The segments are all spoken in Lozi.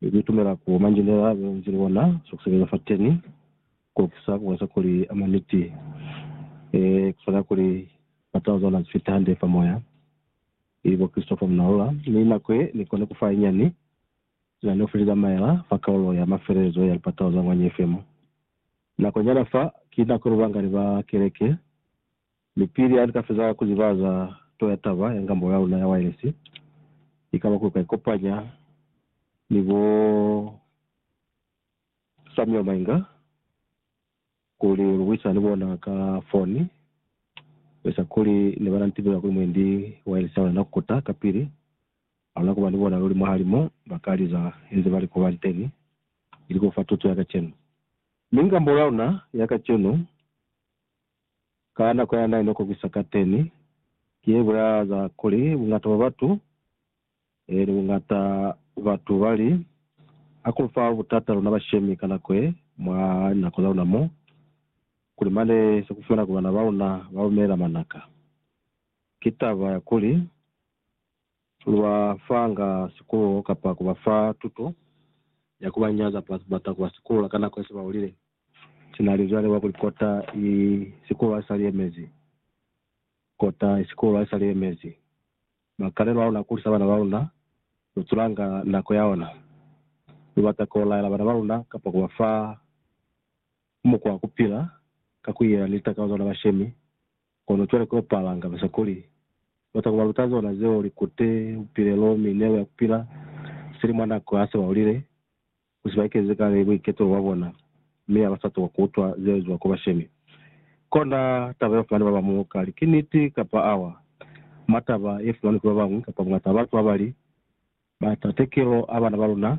Ni itumela ku manjelela leo nzili wona za ku sebeza fateni ko kisa ku bonisa kuli a mwa niti. Ee, ku swana kuli ba taluza ona zifiti hande fa moya, ili bo Christopher Munalula, mi nako ye ni koni ku fa inyani sina ni ofilile maela fa kaulo ya mafelelezo ya lipatalo za Ngwanya FM. Nako nyana fa, ki nako lubangani ba keleke Mi pili hali ka feza ku ziba za to ya taba ya ngambo ya luna ya waelesi, ikaba ku ka ikopanya ni bo Samuel Mainga kuli lu buisana ni bona ka foni, lu eza kuli ne ba na ni tibela kuli mwendi waelesi ya luna na kuta. Kapili ha luna kuba ni bona luli mwahali mo ba ka liza inze ba li ku banteni, ili ku fa tuto ya kacenu. Mi ngambo ya luna ya kacenu ka nako ya naile kokisa kateni, ki ye bulaeza kuli bungata bwa batu, eli bungata batu bali, ha ku fa butata luna bashemi ka nako ye, mwa linako za luna mo, kuli mane se ku fumana kuli bana ba una ba lumela manaka. Ki taba ya kuli, lu ba fanga sikululo kapa ku ba fa tuto ya ku ba nyaza plus bata ku ba sikululo ka nako ye se ba ulile. Si na li zwale wa kuli kota i sikulu a sa liyemezi. Kota i sikulu a sa liyemezi. Makalelo a luna a kulisa bana ba luna, lu tulanga nako ya ona. Lu bata ku laela bana ba luna kapa ku ba fa mukwa wa ku pila ka ku iyela ni litakalo za luna ba shemi. Kono cwale ki opala nga besa kuli, lu bata ku ba luta zona zeo, likute, bupilelo, minelo ya ku pila sili mwa nako ya se ba ulile. ku si ba ekezi kale buiketo bwa bona, mi ha ba sa tokwa ku utwa ze ezwa ku bashemi. Kona taba ye ba fumani ba ba muñwi kali ki niti kapa awa, mwa taba ye fumanwi ki ba bañwi kapa bungata ba batu ba ba li, Ba ta tekelo a bana ba luna,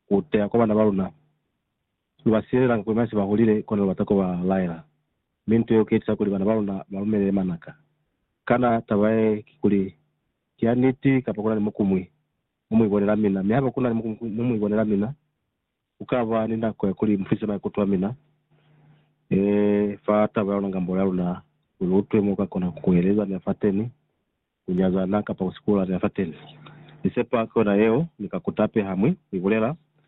ku teya kwa bana ba luna. Lu ba siyelela nako ye mwa se ba hulile, kona lu bata ku ba laela. Mi nto yeo ki ye tisa kuli bana ba luna ba lumelele manaka. Kana taba ye ki kuli ki ya niti kapa ku na ni mukumwi? mu mu ibonela mina, mi haba ku na ni mu mu ibonela mina, ku ka ba ni nako ya kuli mu fise maikuto a mina fa taba ya luna ngambolo ya luna, ku lu utwe mo lu ka kona ku eleza ni ya fateni, ku nyazana, kapa ku sikula ni ya fateni. Ni sepa ki yona yeo ni ka kuta pe ha mwi ku ibulela,